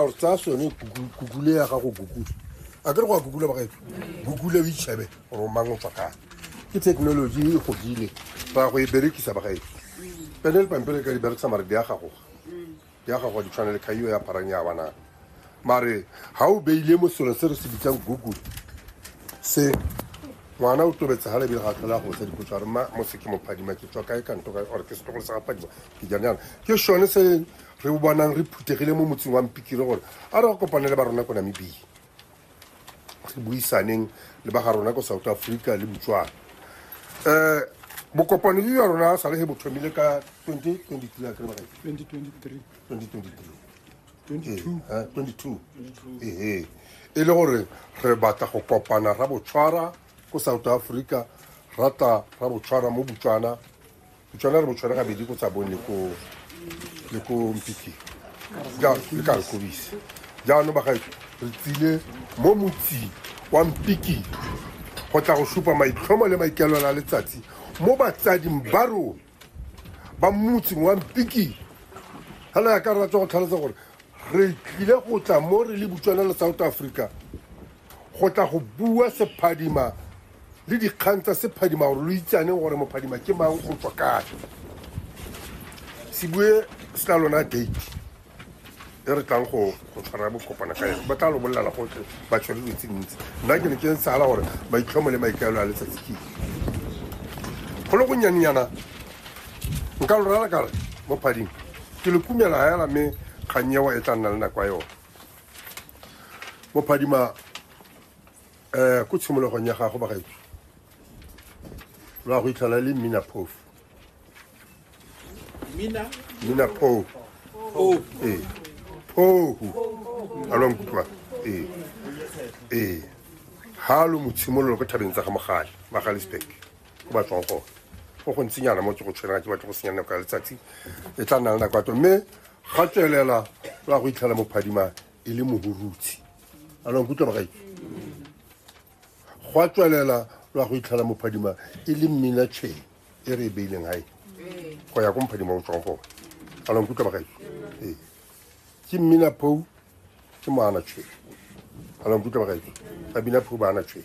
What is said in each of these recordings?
gore tsaya sone kukule ya gago kukule a ke re go a kukula bagaetso kukule o itšhebe gore o mang o tswa kang ke technology e godile ra go e berekisa bagaetso pene le pampele ka di berekisa mare di ya gagoga di ya gagoga di tshwana le kgaio ya pharang ya banana mare ga o beile mo selo se re se bitsang google se ngwana o tobetse ga lebile ga tlhola go sa dipotso gore ma mo se ke mophadima ke tswa kae kanto kae or ke setlogolo sa gaphadima ke janang ke sone se re bonang re phuthegile mo motseng wa mpikire gore a re go kopane le ba rona ko namibia re buisaneng le ba ga rona ko south africa le botswana um bokopano jo jwa rona sa le ge bo thomile ka 2023 a kry ba 2023 2023 ee e le gore re batla go kopana ra botshwara ko south africa rata ra botshwara mo botswana Botshwana re botshwana gabedi ko tsabong le ko le ko mpiking jalo le ka nkobise jaanong bagaetso re tsile mo motsing wa mpiking go tla go supa maitlhomo le maikaelelo a letsatsi mo batsading ba rona ba motsing wa mpiking fela ya ka re ratsa go tlhalosa gore re tlile go tla mo re le butswana le south africa go tla go bua sephadima le dikgang tsa sephadima gore lo itsaneng gore mophadima ke mang o tswa kae se bue se tla lona date e re tlang go tshwara bokopana ka yone ba tla lo bolelela gotlhe ba tshwere dilo tse dintsi nna ke ne ke sala gore maitlhomo le maikaelo a letsatsi ke go le gonyanenyana nka lo rala kare mo phading ke le kumela hela mme kgang ewa e tla nna le nako ya yone mo phadima um ko tshimologong ya gago bagaetso lo a go itlhola le mmina phof mmina pho ee phohu a lo nkutlwa ee ee ga lo motshimololo ko thabeng tsa ga mogale magalisburg ko ba tswang gone go go ntsinyana mo tse go tshwenega ke batho go senyana nako ya letsatsi e tla nna le nako ya to mme ga tswelela lo a go itlhela mo phadima e le mohurutshi a lo nkutlwa magae go a tswelela lo ya go itlhela mophadima e le mmina chain e re e beileng gae go ya ko mophadima o tswang gone a lo nkutlwa magae ee ke mmina pou ke moana chain a lo nkutlwa magae ba bina pou ba ana chain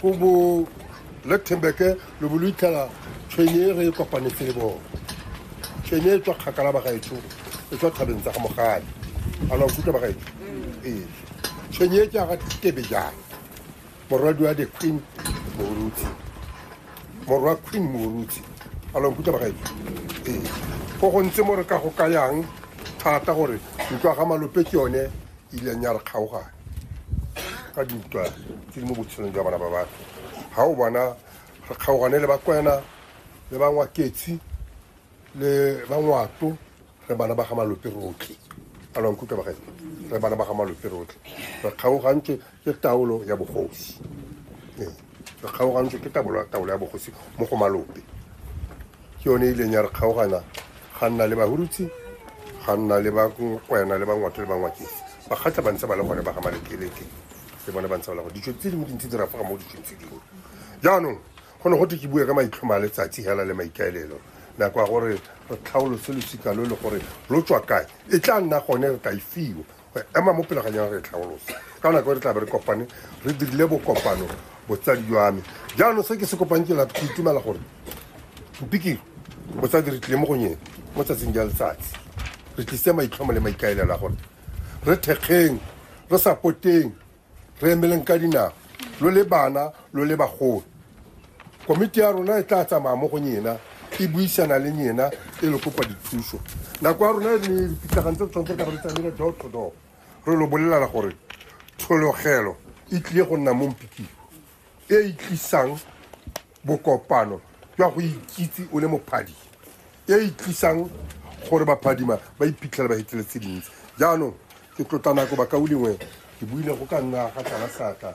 ko bo luxemburke lo bo lo itlhela tshwenye e re e kopanetse le bone tshwenye e tswa kgakala bagaetsho e tswa thabeng tsa ga mogale a la nkutlwa bagaetsho ee tshwenye e jaaka tebe jang morwadi wa the queen moruti morwa queen moruti a la nkutlwa bagaetsho ee go gontse mo re ka go kayang thata gore ntlo ga malope ke yone e ileng ya re kgaogane ka dintwa tse di mo botshelong jwa bana ba batho ga o bona re kgaogane le bakwena le bangwaketsi le bangwato re bana ba ga malope rotlhe a lwankutlwa bagae re bana ba ga malope rotlhe re kgaogantse ke taolo ya bogosi ee re kgaogantswe ke taolo taolo ya bogosi mo go malope ke yone e ileng ya re kgaogana ga nna le bahurutsi ga nna le bakwena le bangwato le bangwakeng bakgatla ba ntse ba le gone ba ga malekeleke le bone ba ntse ba le gone ditso tse dingwe dintsi di rafaga mo ditsong tse dingwe jaanong go ne go te ke bue ka maitlhomo a letsatsi hela le maikaelelo nako ya gore re tlhaolose losika lo le gore lo tswa kae e tla nna gone re ka e fiwa ema mo pele ga nyang re tlhaolosa ka nako re tla be re kopane re dirile bokopano botsadi jwa me jaanong se ke se kopang ke la itumela gore mpikiro botsadi re tlile mo go nyeng mo tsatsing ja letsatsi re tlise maitlhomo le maikaelela gore re thekgeng re sapoteng re emeleng ka dinao lo le bana lo le bagolo komiti ya rona e tla tsamaya mo go nyena e buisana le nyena e le kopa dithuso nako ya rona e ne dipitlagane tse tshwanetse ka re tsamile door to door re lo bolelela gore tshologelo e tlile go nna mo mpikiwa e e tlisang bokopano jwa go ikitse o le mophadi e e tlisang gore baphadima ba iphitlhela ba hetile tse dintsi jaanong ke tlotla nako bakaulengwe ke buile go ka nna ga tlala sata